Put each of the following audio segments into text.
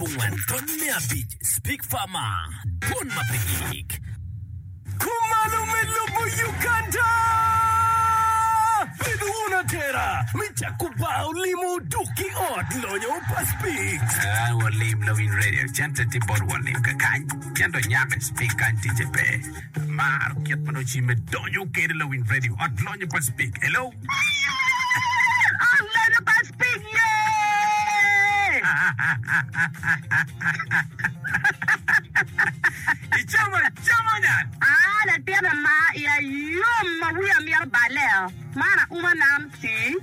Pungwen Tony me abic Speak Farma Dwon ma pe gik Kumalo me lobo Uganda Bedo wun atera me cako bar olimo Dok ki ot lonyo pa Speak Aa walim lawiny radio Cente tye bot walim kakany Cente onyak Speak kany ticce pe Amaro kit ma nongo cimme donyo kede lawiny radio ot lonyo pa Spik. Hello. Ot lonyo pa Spik ye. Icamo camo nyan. Ah latin ama iya yom ma wiya mito baleo man auma nam tii.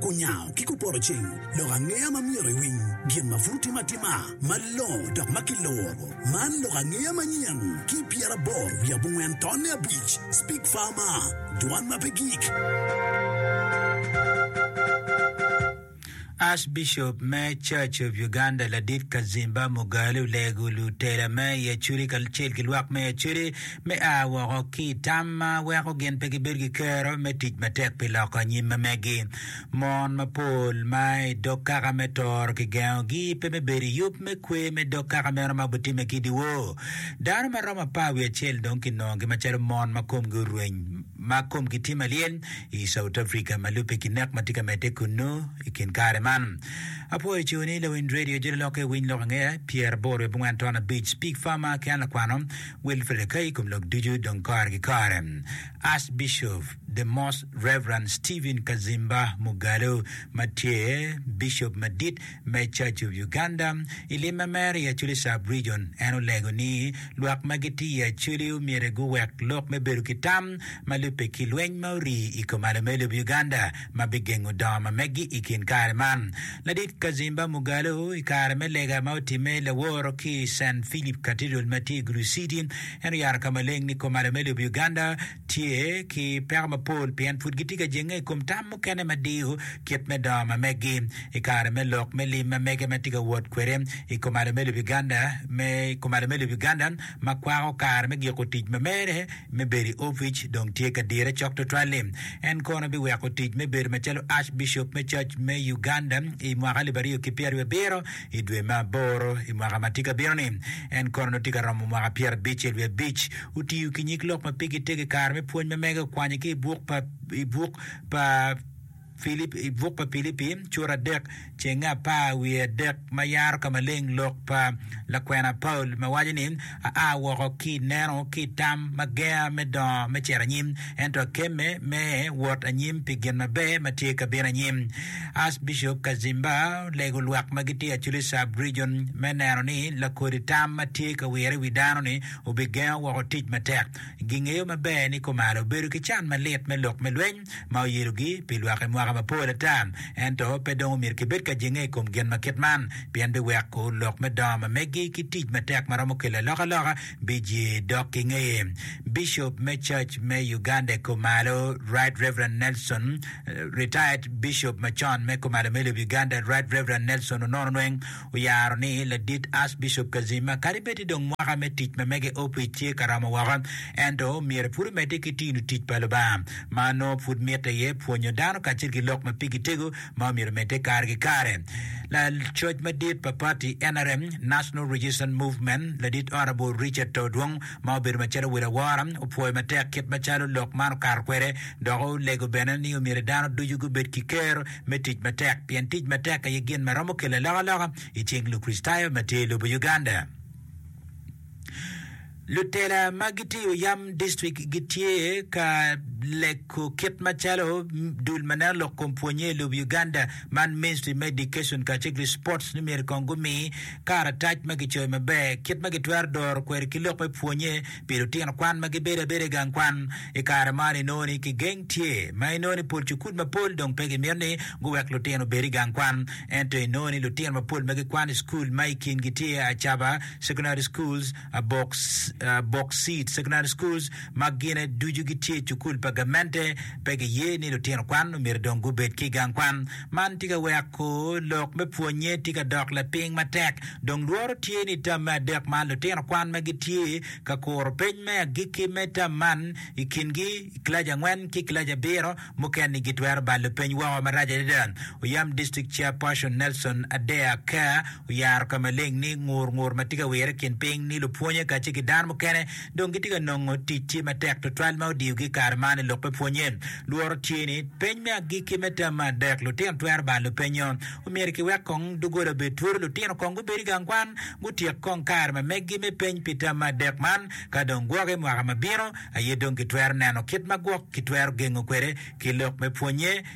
Kunyango ki kuporoceng lok angeya ma myero iwiny gin ma pud timo atima malongo dok ma kiloro. Man lok angeya manyen ki pyeraboro wiye abongwen tonne abic, Speak Farmer, Dwan ma pe gik. Archbishop me Church of Uganda Ladit Kazimba Mugalu olego lutela me i Acholi kacel ki lwak me Acholi me a woko ki i tam ma weko gin pe gibedo ki kero me tic matek pi loko anyim ma megi. Mon mapol ma i dog kaka me toro kigengogi pe me bedo i yub me kwe me dog kaka meno ma obitimme ki i dyewor. Dano ma romo apar wiye acel dong kinongogi macalo mon ma komgi orweny ma komgi tye malyel i South Africa ma lubbe ki nek ma tye ka medde kunnu i kin kare man. Apwoyo coni lawiny redio Jololokke Winy Lok Angeya, Pyeraboro wiye abongwen ton abic, Pig Farmer ki an lakwano, Wilfred Akai i kom lok ducu dong kore ki kore. Archbishop The Most Rev. Stephen Kazimba Mugalu ma tye Bishop Madit me Church of Uganda i lim ma mere i Acholi Sub Region en olego ni lwak ma gitye i Acholi omyero guwek lok me bedo ki tam ma lubbe ki lweny ma orii i kom alomelo Uganda ma bigengo dongo ma megi i kin kare man. Ladit Kazimba Mugalu i kare me lega ma otimme i laworo ki i San Philip Cathedral ma tye i Gulu City, en oyaro ka maleng ni komala me lobo Uganda tye ki peko mapol pien pud gitye ka jenge i kom tam mukene ma diyo kit me dongo ma megi i kare me lok me lim ma mege ma tye ka wot kwede i komala me lobo Uganda ma kwako kare me giko tic ma mere me bedo i opic dong tye ka dire cok tutwal-li. En kono biweko tic me bedo macalo Archbishop me Cac me Uganda i mwaka alip aryo ki pyeraryo abiro i dwe me aboro i mwaka ma tye ka bino-ni. En kono nongo tye ka romo mwaka pyerabic-ce wiye abic. Otiyo ki nyig lok ma pigi tek i kare me pwony ma mege okwanye ki i buk pa i buk pa Filip, i buk pa Pilipi, cura adek, cenge apar wiye adek, ma yaro ka maleng lok pa lakwena Paulo ma waco ni, Aa woko ki i neno ki i tam ma genga me dongo me cito anyim, ento akemme me wot anyim pi gin maber ma tye ka bino anyim. Archbishop Kazimba olego lwak ma gitye i Acholi Sub Region me neno ni lakodi tam ma tye ka wire i wi dano-ni obigengo woko tic matek. Gingeyo maber ni kumalo obedo ki can malit me lok me lweny. ma oyelogi pi lwak i mwaka mapol ata. Ento pe dong omyero kibed ka jenge i kom gin ma kit man, pien biweko lok me dongo ma meggi ki tic matek ma romo kelo alokaloka biye dok ki ngeye. Bicop me Cac me Uganda i Kumalo, Right Rev. Nelson, Retired Bicop macon me Kumalo me lobo Uganda, Right Rev. Nelson Onono Nweng, oyaro ni, Ladit Archbishop Kazima, kadi bed ni dong mwaka me tic ma mega i opic tye ka romo woko, ento myero pud omedde ki tinu tic pa Lubanga. Ma nongo pud mitte iye pwonyo dano kacel ki lok ma pigi tego ma omyero omedde kare ki kare. Lacoc madit pa pati nrm, National Resistance Movement, Ladit Honourable Richard Todwong, ma obedo macalo wel awora, opwoyo matek kit macalo lok man okato kwede dok olego bene ni myero dano ducu gubed ki kero me tic matek pien tic matek aye gin ma romo kelo alokaloka i cing Lukricitayo ma tye i lobo Uganda. Lutela ma gitiyo yam distrik gitye ka leko kit macalo dul ma neno lok kom pwonnye i lobo Uganda man Ministry me Education kacel ki Sports ni myero kong gumi karatac ma gicoyo maber kit ma gitwero doro kwede ki lok me pwonnye Pi lutino kwan ma gibedo abeda i gang kwan i kare man, inongo ni kigeng tye ma inongo ni pol cukul mapol dong pe gimito ni guwek lutino obed i gang kwan. Ento inongo ni lutino mapol ma gikwan i cukul ma i kingi tye Acaba Secondary Schools, Abok, Abok Seed Secondary Schools ma gine ducu gitye cukul pa gamente pe giye ni lutino kwan omyero dong gubed ki i gang kwan. Man tye ka weko lok me pwonnye tye ka dok lapiny matek. Dong lworo tye ni i tam me adek man lutino kwan ma gitye ka kuro peny me agikki me tam man i kingi i kilaci angwen ki kilaci abiro mukene-ni gitwero balo peny woko marac adada. Oyam District Chairperson Nelson Adea Ker oyaro ka maleng ni ngur ngur ma tye ka wirre i kin piny ni lupwonye kacel ki dano mukene dong gitye ka nongo tic tye matek tutwal ma odiyogi i kare man i lok me pwonnye. Lworo tye ni, peny me agikki me tam me adek, lutino twero balo lupenyo. Omyero kiwek kong doggola obed twolo, lutino kong gubed i gang kwan, gutyek kong kare ma meggi me peny pi tam me adek man. Ka dong gwoke mwaka ma bino aye dong kitwero neno kit ma gwok kitwero gengo kwede ki lok me pwonnye.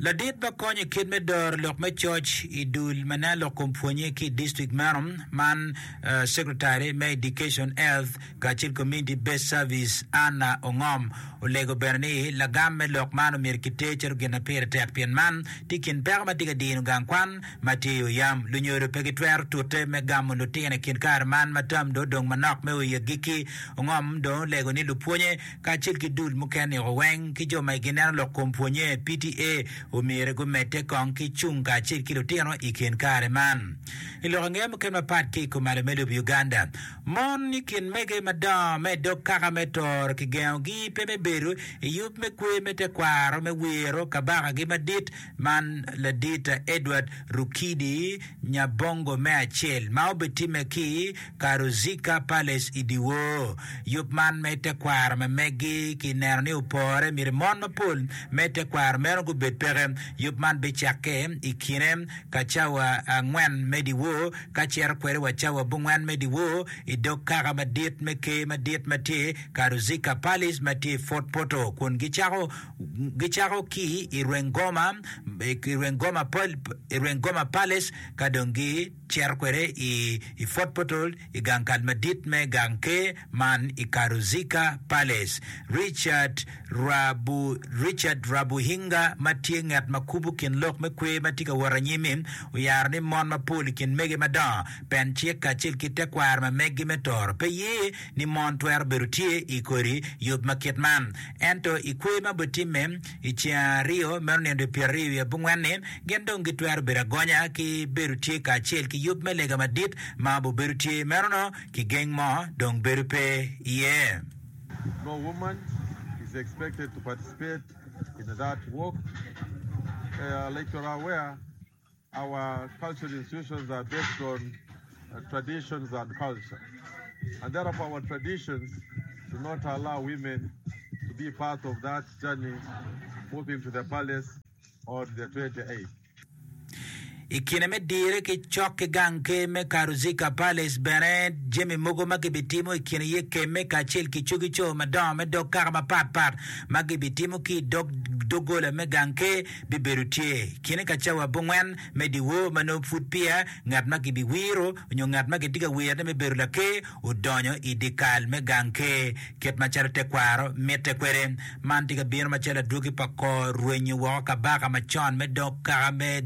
Ladit ma konyo i kit me doro lok me coc i dul ma nen lok kom pwonnye ki i district meno man secretary me education, health kacel ki community based service Anna Ongom olego bene ni lagam me lok man myero ki ter calo gin ma pire tek pien man tye i kin peko ma tye ka dino gang kwan ma tye i oyam. Lunyodo pe gitwero tute me gamo lutino i kin kare man ma tam dong odong manok me o i agikki. Ongom dong olego ni lupwonnye kacel ki dul mukene-o weng ki jo ma gineno lok kom pwonye, PTA, omyero gumedde kong ki cung kacel ki lutino i kin kare man. I lok ange mukene mapat ki i kom malo me lobo Uganda, mon i kin mege madongo me dog kaka me toro kigengogi pe me bedo i yub me kwe me tekwaro me wiro Kabakagi Madit, Man Ladita Edward Rukidi Nyabongo me acel ma obitimme ki Karuzicker Palace i dyewor. Yub man me tekwaro me meggi ki neno ni opore myero mon mapol me tekwaro meno gubed peke. Yub man bicakke i kine ka cawa angwen me dyewor ka cito kwede wa cawa abongwen me dyewor i dog kaka madit me Ker madit ma tye Karuzicker Palace ma tye i Fort Portal kun gicako gicako ki i rweng goma, i rweng goma, i rweng goma Palace ka dong gicito kwede i i Fort Portal i gang kal madit me gang ker man i Karuzika Palace. Richard Rabu Richard Rabuhinga ma tye ngat ma kubo kin lok me kwer ma tye ka wot anyim-mi oyaro ni mon mapol i kin mege madongo pencek kacel ki tekwaro ma meggi me toro pe ye ni mon twero bedo tye i kodi yub ma kit man. Ento i kwer ma bitimme i ceng aryo meno nino dwe pyeraryo i abongwen-ni, gin dong gitwero bedo agonya ki bedo tye kacel ki yub me lega madit ma bubedo tye. Meno-nu kigeng mo dong bedo pe iye. I kine me dire ki cok ki gang ker me Karuzica Palace bene, jami mogo ma gibitimo i kine iye kemme kacel ki cogi co madongo me dog kaka mapatpat ma gibitimo ki i dog doggola me gang ker. bibedo tye. Kine ka cawa abongwen me dyewor ma nongo pud peya ngat ma kibiwiro nyo ngat ma kitye ka wirone me bedo laker odonyo i dyekal me gang ker, kit macalo tekwaro mitte kwede. Man tye ka bino macalo adwogi pa kor rwenyo woko kabaka macon me dog kaka me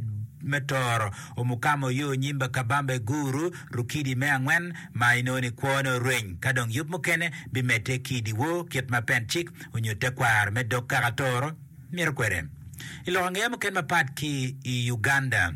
Toro, Omukama Oyo Onyimba Kabamba Iguru, Rukidi me angwen, ma inongo ni kwone orweny ka dong yub mukene bimedde ki i dyewor kit ma pencik onyo tekwaro me dog kaka Toro. mito kwede i lok angeya mukene mapat ki i Uganda.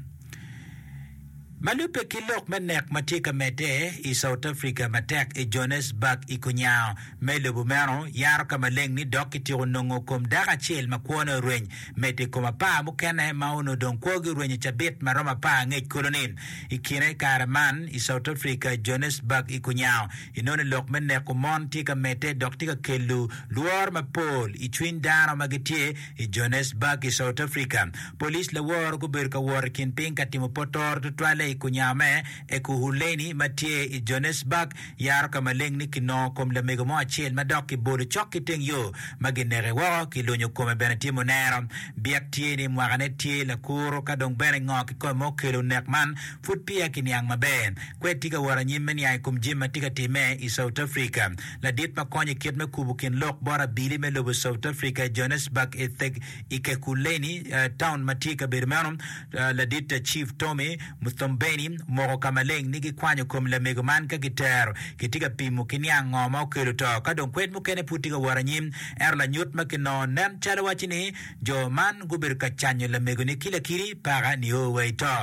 Ma lubbe ki lok me nek ma tye ka medde i South Africa matek i Johannesburg i kunya me lobo meno, yaro ka maleng ni dok kityeko nongo kom dako acel ma kwone oreny. Medo i kom apar mukene ma onongo dong kwogi oreny i cabit ma romo apar angec kulu ni, I kine kare man i South Africa, Johannesburg i kunya, Enoni lok me neko mon tye ka medde dok tye ka kelu lworo mapol i cwiny dano ma gitye i Johannesburg i South Africa. Police laworo gubedo ka wot i kin piny ka timo potoro tutwalle i kunyar me Ekurhuleni ma tye i Johannesburg yaro ka maleng ni kinongo kom lamego mo acel ma dok kibolo cok ki teng yo ma gineke woko ki lunyo kome bene tye munero. Byek tye ni mwakane tye lakuro ka dong bene ngo kikome ma okelo nek man Pud peya kiniang maber kwed tye ka wot anyim me niang i kom jami ma tye ka timme i South Africa. Ladit ma konyo i kit me kubo kin lok bot abili me lobo South Africa i Johannesburg i Theg Ekurhuleni, taun ma tye i kabedo meno, Ladit Chief Tommy Mthombeni, omoko ka maleng ni gikwanyo kom lamego man ka gitero. Kitye ka pimo ki niang ngo ma okelo to ka dong kwed mukene pud tye ka wot anyim. Ento lanyut ma kinongo nen calo waco ni jo man gubedo ka canyo lamego-ni ki lakiri paka nio wa i to.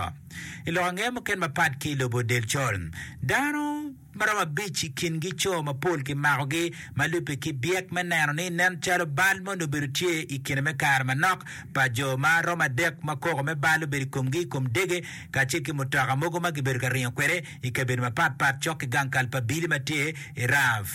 I lok angeya muken mapat ki i lobo del col, dano ma romo abic i kingi co mapol kimakogi ma lubbe ki byek me neno ni nen calo bal moni obedo tye i kine me kare manok pa jo ma romo adek ma koko me bal obedo i komgi i kom dege kacel ki mutoka mogo ma gibedo ka ringo kwede i kabedo mapatpat cok ki gang kal pa Billy ma tye i Rough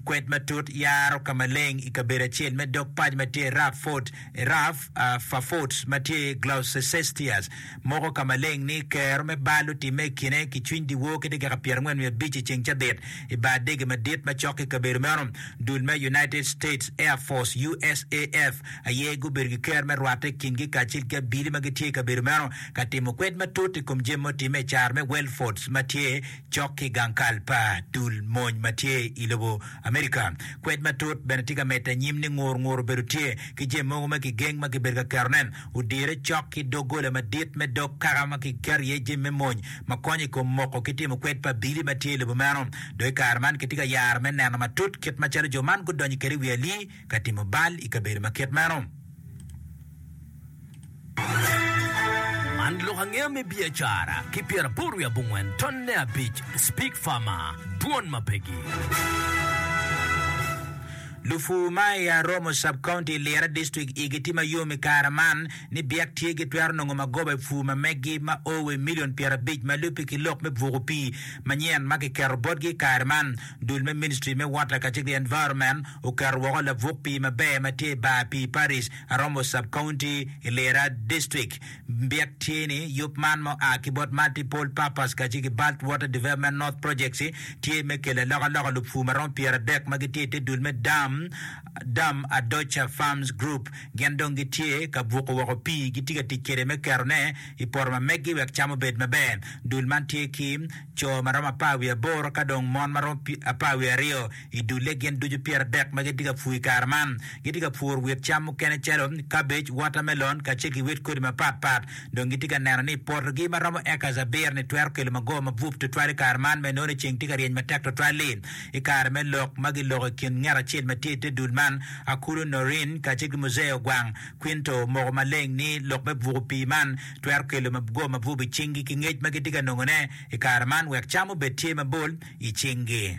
kwed matut yaro ka maleng i kabedo acel me dog paco ma tye i Rough Fort Rough uh, Fafort ma tye Gloucester Moko ka maleng ni, Kero me bal otimme i kine ki cwiny dyewor ki dakika pyerangwen wiye abic i ceng cabit i bar dege madit ma cok ki kabedo meno. Dul me United States Air Force, USAF, aye gubedo ki kero me rwatte i kingi kacel ki abili ma gitye i kabedo meno ka timo kwed matut i kom jami ma otimme i caro me Wellfords ma tye cok ki gang kal pa dul mony ma tye i lobo America. Kwed matut bene tye ka medde anyim ni ngur ngur obedo tye ki jami mogo ma kigeng ma kibedo ka ketone. Odire cok ki doggola madit me dog kaka ma kiketo iye jami me mony ma konyo i kom moko ki timo kwed pa abili ma tye i lobo meno. Dong i kare man kitye ka yaro me neno matut kit macalo jo man gudonyo kwede i wi ali ka timo bal i kabedo ma kit meno. Man lok angeya me biacara ki pyeraboro wiye abongwen tonne abic, Spig Farmer, Dwon ma pegi. Lupur ma i Aromo Sub-County i Lira District igi tye ma yom i kare man ni byek tye gitwero nongo magoba i pur ma meggi ma o wa i milion pyerabic ma lubbe ki lok me buko pii manyen ma kiketo botgi i kare man. Dul me Ministry me Water kacel ki Environment oketo woko labuk pii maber ma tye i bar pii Parish, Aromo Sub-County i Lira District. Byek tye ni, yub man ma oa ki bot Multiple Purpose kacel ki Balt Water Development North Projects tye me kelo alokaloka lupur ma romo pyeradek ma gitye i te dul me dam, Dam Adocha Farms Group, gin dong gitye ka buko woko pii gitye ka tic kwede me keto ne i poto ma meggi wek cam obed maber. Dul man tye ki co ma romo apar wiye aboro ka dong mon ma romo apar wiye aryo. I dulle gin ducu pyeradek ma gitye ka pur i kare man, gitye ka puro wit cam mukene calo kabej, watermelon, kacel ki wit kodi mapatpat. Dong gitye ka neno ni potogi ma romo acres abiro-ni twero kelo magowa mabup tutwal i kare man ma inongo ni ceng tye ka ryeny matek tutwal-li. I kare me lok ma giloko i kin ngat acel ma tye i te dul man, Akulu Noreen kacel ki Muzee Ogwang, Quinto omoko maleng ni lok me buko pii man twero kelo magowa mabup i cinggi ki ngec ma gitye ka nongone i kare man wek cam obed tye mabol i cinggi.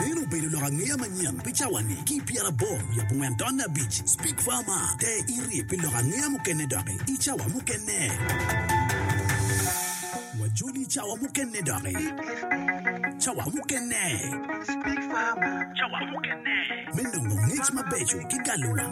Meno obedo lok angeya manyen pi cawa-ni ki i pyeraboro wiye abongwen taun abic. Speak Farmer, te iri pi lok angeya mukene doki i cawa mukene. Wajoli cawa mukene doki. Cawa mukene. Speak Farmer, cawa mukene. Me nongo ngec mabeco ki galo wang.